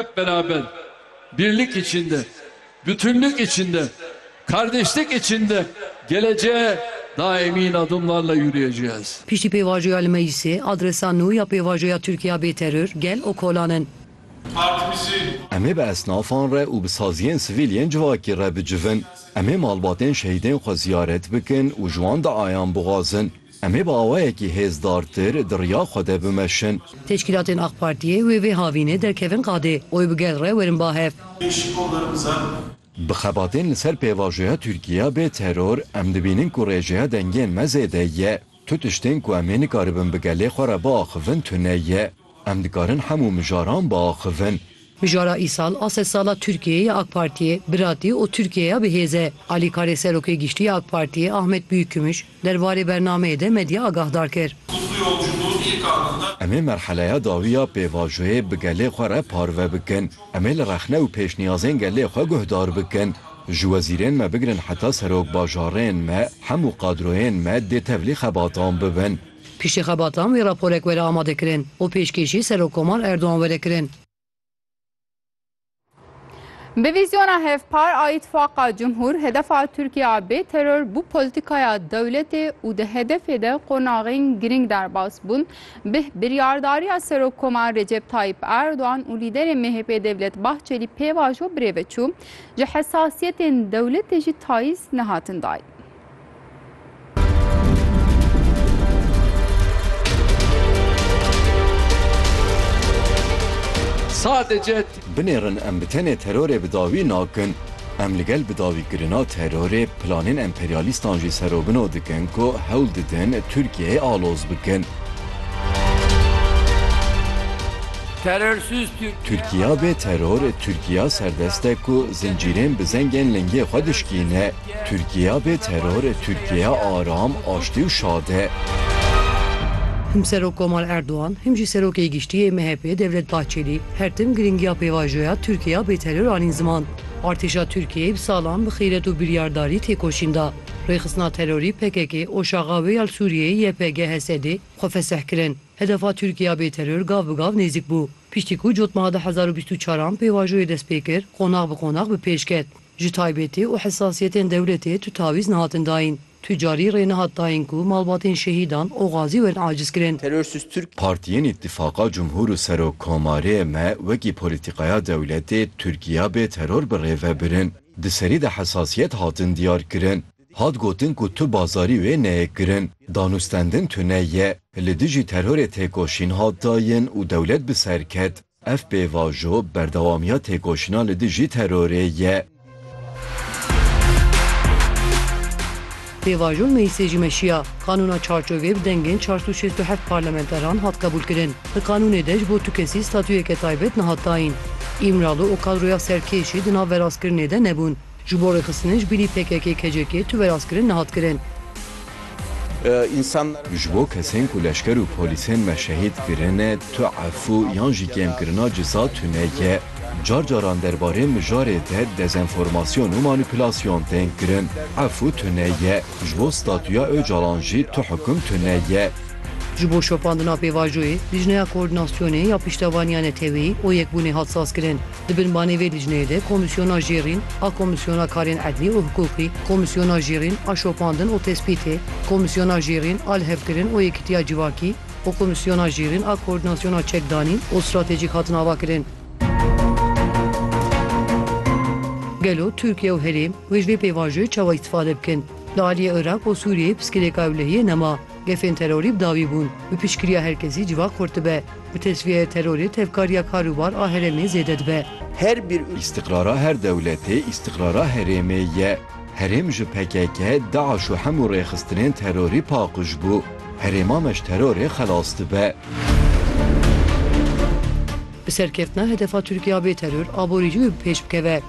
Hep beraber, birlik içinde, bütünlük içinde, kardeşlik içinde geleceğe daha emin adımlarla yürüyeceğiz. Piştî pêvajoya li meclîsê, adresa nû ya pêvajoya Tirkiya bê teror, gel û kolan in. Partimizin. Em ê bi esnafan re û bi saziyên sivîl yên civakî re bicivin. Em ê malbatên şehîdên xwe ziyaret bikin û ji wan duayan bixwazin. Em ê bi awayekî hêzdartir di riya xwe de bimeşin. Teşkîlatên Ak Partiyê wê vê havînê derkevin qadê û bi gel re werin ba hev. Bi xebatên li ser pêvajoya Tirkiye bê teror, em dibînin ku rêjeya dengên me zêde ye. Tu tiştên ku em ê nikaribin bi gelê xwe re biaxivin tune ye. Em dikarin hemû mijaran biaxivin. Mijara îsal a sed sala Tirkiyeyê ya AK Partiyê, biratî û Tirkiyeya bi hêz e. Alîkarê Serokê Giştî ya AK Partiyê Ahmet Büyükgümüş derbarê bernameyê de medya agahdar kir. Em ê merheleya dawî ya pêvajoyê bi gelê xwe re parve bikin. Em ê li rexne û pêşniyazên gelê xwe guhdar bikin. Ji wezîrên me bigirin heta serokbajarên me, hemû qadroyên me dê tevlî xebatan bibin. Piştî xebatan vê raporek were amadekirin û pêşkêşî Serokkomar Erdogan were kirin. Bi vîzyona hevpar a Îtfaqa Cumhur, hedefa Tirkiye a bê teror bû polîtîkaya dewletê û di hedefê de qonaxên girîng derbas bûn. Bi biryardariya Serokkomar Recep Tayyîp Erdogan û lîderê MHP'ê Devlet Bahçelî pêvajo birêve çû. Ji hesasiyetên dewletê jî tayîz nehatin dayîn. Sadece binêrin em bi tenê terorê bi dawî nakin, em li gel bidawîkirina terorê planên emperyalîstan jî serobino dikin ku hewl didin Tirkiyeyê aloz bikin. Tirkiya bê teror, Tirkiya serdest e ku zincîrên bi zengên lingê xwe dişkîne. Tirkiya bê teror e Tirkiya aram, aştî û şad e. Him Serok Komal Erdogan, him jî Serokê Giştî yê MHP'ê Devlet Bahçelî her tim girîngiya pêvajoya Tirkiya bê teror anîn ziman. Artêşa Tirkiyeyê bi salan bi xîret û biryardarî têkoşîn da. Rêxistina terorî PKK'ê, OŞAG'a wê ya li Sûriyeyê YPG, HSD'ê xwe fesih kirin. Hedefa Tirkiya bê teror gav bi gav nêzik bû. Piştî ku cotmeha du hezar û bîst û çar an pêvajoyê dest pê kir, qonax bi qonax bi pêş ket. Ji taybetî û hesasiyetên dewletê tu tawîz nehatin dayîn. Tu carî rê nehat dayîn ku malbatên şehîdan û xazî werin acizkirin. Terörsüz Türk. Partiyên Îtîfaqa Cumhur û Serok Komarê me wekî polîtîkaya dewletê Tirkiya bê teror bi rê ve birin. Di serî de hesasiyet hatin diyar kirin. Hat gotin ku tu bazarî wê neyê kirin. Danûstendin tune ye. Li dijî terorê têkoşîn hat dayîn û dewlet bi ser ket. Ev pêvajo berdewamiya têkoşîna li dijî terorê ye. Pêvajo li Meclîsê jî meşiya. Qanûna Çarçovê bi dengên çar sed û şêst û heft parlamenteran hat qebûlkirin. Di qanûnê de ji bo tu kesî statuyeke taybet nehat dayîn. Îmralı û kadroya serkêş jî di nav verastkirinê de nebûn. Ji bo rêxistinê ji bîrî PKK-KCK tu veraskirin nehat kirin. Ji bo kesên ku leşker û polîsên me şehîd kirine tu efû yan jî kêmkirina cisa tune ye. Car caran derbarê mijarê de dezenformasyon û manîpulasyon tên kirin. Efû tune ye. Ji bo statuya Ocalan jî tu hukum tune ye. Ji bo şopandina pêvajoyê, lijneya koordinasyonê ya piştevaniya neteweyî û yekbûnê hat sazkirin. Di binbanê vê licneyê de Komîsyona Jêrîn a Komîsyona Karên Edlî û Hiqûqî, Komîsyona Jêrîn a Şopandin û Tespîtê, Komîsyona Jêrîn a Lihevkirin û Yekitiya Civakî û Komîsyona Jêrîn a Koordînasyona Çekdanî û Stratejîk hatin avakirin. Gelo Tirkiye û herêm wê ji vê pêvajoyê çawa îstîfade bikin? Li aliyê Iraq û Sûriyeyê piskilêka ewlehiyê nema. Gefên terorî bi dawî bûn. Bi piştgiriya her kesî civak xurt dibe. Bi tecrîyeyê terorê tevkarîya kar û bar a herêmê zêde dibe. Her bir û. Îstiqrara her dewletê îstiqrara herêmê ye. Herêm ji pkk, DAIŞ û hemû rêxistinên terorî paqij bû. Herêma me ji terorê xelas dibe. Bi serkeftina hedefa Tirkîya bê teror aborîcî wê bi pêş bikeve.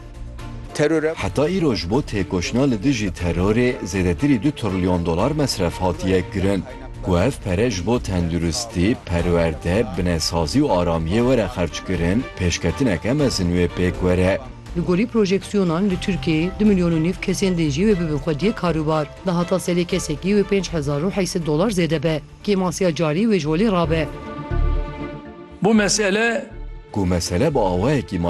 Teror e. Heta îro ji bo têkoşina li dijî terorê zêdetirî du trilyon dolar mesref hatiye kirin. Ku ev pere ji bo tenduristî, perwerde, binesazî û aramiyê were xerckirin, pêşketineke mezin wê pêk were. Li gorî projeksiyonan li Tirkiyeyê du milyon û nîv kesên din jî wê bibin xwediyê karûbar. Di hata serê kesekî wê pênc hezar û heyset dolar zêde be. Kêmasiya carî wê ji holê rabe. Ku mesele bi awayekî